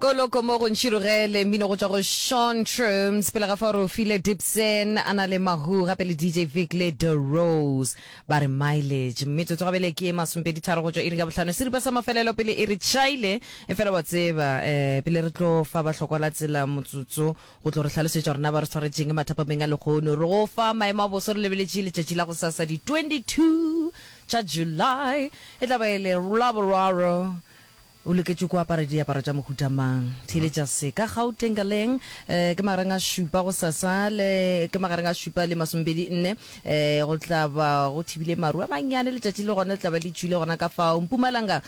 Koloko mo go ntšhirogele, mmino go tšwa go Sean Trooms, pele ga fao re o file Dipson a na le Mahoo gape le DJ Vic le Da Rose ba re Mileage. Metsotso gabele ke e masompedi tharo go tšwa iring ya bohlano, seripa sa mafelelo pele e re tšhaile. Efela wa tseba, eh, pele re tlo fa bahlokwa la tsela motsotso go tlo re hlalosetša gore na ba re swaretšeng mathapameng a lekgono, re go fa maemo a boso re lebeletše letšatši la gosasa di 22 tša July, e tla ba e le Laboraro. O loketše ku apara diaparo tša mohuta mang? Theeletša se. Ka Gauteng ka leng? Ke magareng a šupa go sasa le, ke magareng a šupa le masomepedi nne. Go tla ba go thibile maru a mannyane, letšatši le gona le tla ba le tšwile gona ka fao. Mpumalanga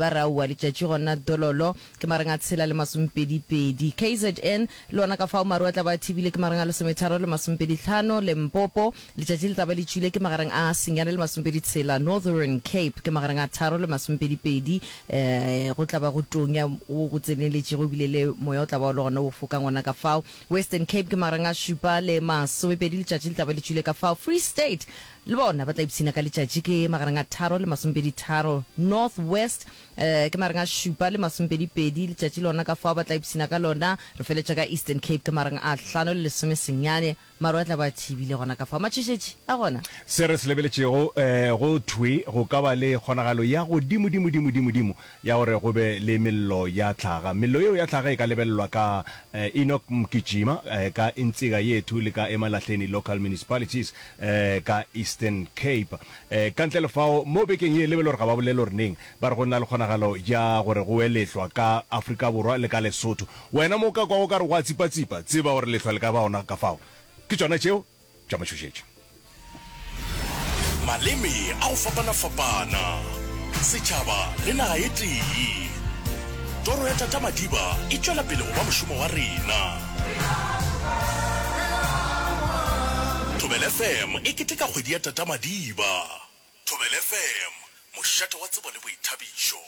ba re aowa, letšatši gona dololo. Ke magareng a tshela le masomepedi pedi. KZN le gona ka fao maru a tla ba a thibile, ke magareng a lesometharo le masomepedi tlhano. Lempopo Letšatši le tla ba le tšwile ke magareng a senyane le masomepedi tshela, Northern Cape, ke magareng a tharo le masomepedi pedi. Go tla ba go tonya go go tseneletšego ebile le moya o tla ba o le gona wo fokang gona ka fao. Western Cape ke magareng a šupa le masomepedi, letšatši le tla ba le tšwile ka fao. Free State le bona ba tla ipshina ka letšatši ke magareng a tharo le masomepedi tharo. North West ke magareng a šupa le masomepedi pedi, letšatši lona ka fao ba tla ipshina ka lona. Re feletša ka Eastern Cape ke magareng a hlano le lesome senyane. Maru a tla ba a thibile gona ka fao. Matšhošetši a gona. Se re se lebeletšego, ee, go thwe go ka ba le kgonagalo ya godimodimodimodimodimo ya gore go be le mello ya tlhaga. Mello yeo ya tlhaga e ka lebelelwa ka Enoch Mgijima, ee, ka Intsika Yethu le ka Emalahleni Local Municipalities, ee, ka Eastern Cape. Ee, ka ntle le fao, mo bekeng ye, le be le gore ga ba bolele gore neng, ba re go na le kgonagalo ya gore go we lehlwa ka Afrika Borwa le ka Lesotho. Wena mo o ka kwago o ka re go a tsipatsipa, tseba gore lehlwa le ka ba gona ka fao. Ke tšona tšeo tša matšhošetši. Maleme a go fapana-fapana, setšhaba le naga e tee. Toro ya Tata Madiba e tšwela pele go ba mošomo wa rena. Thobela FM e keteka kgwedi ya Tata Madiba. Thobela FM, mošate wa tsebo le boithabišo.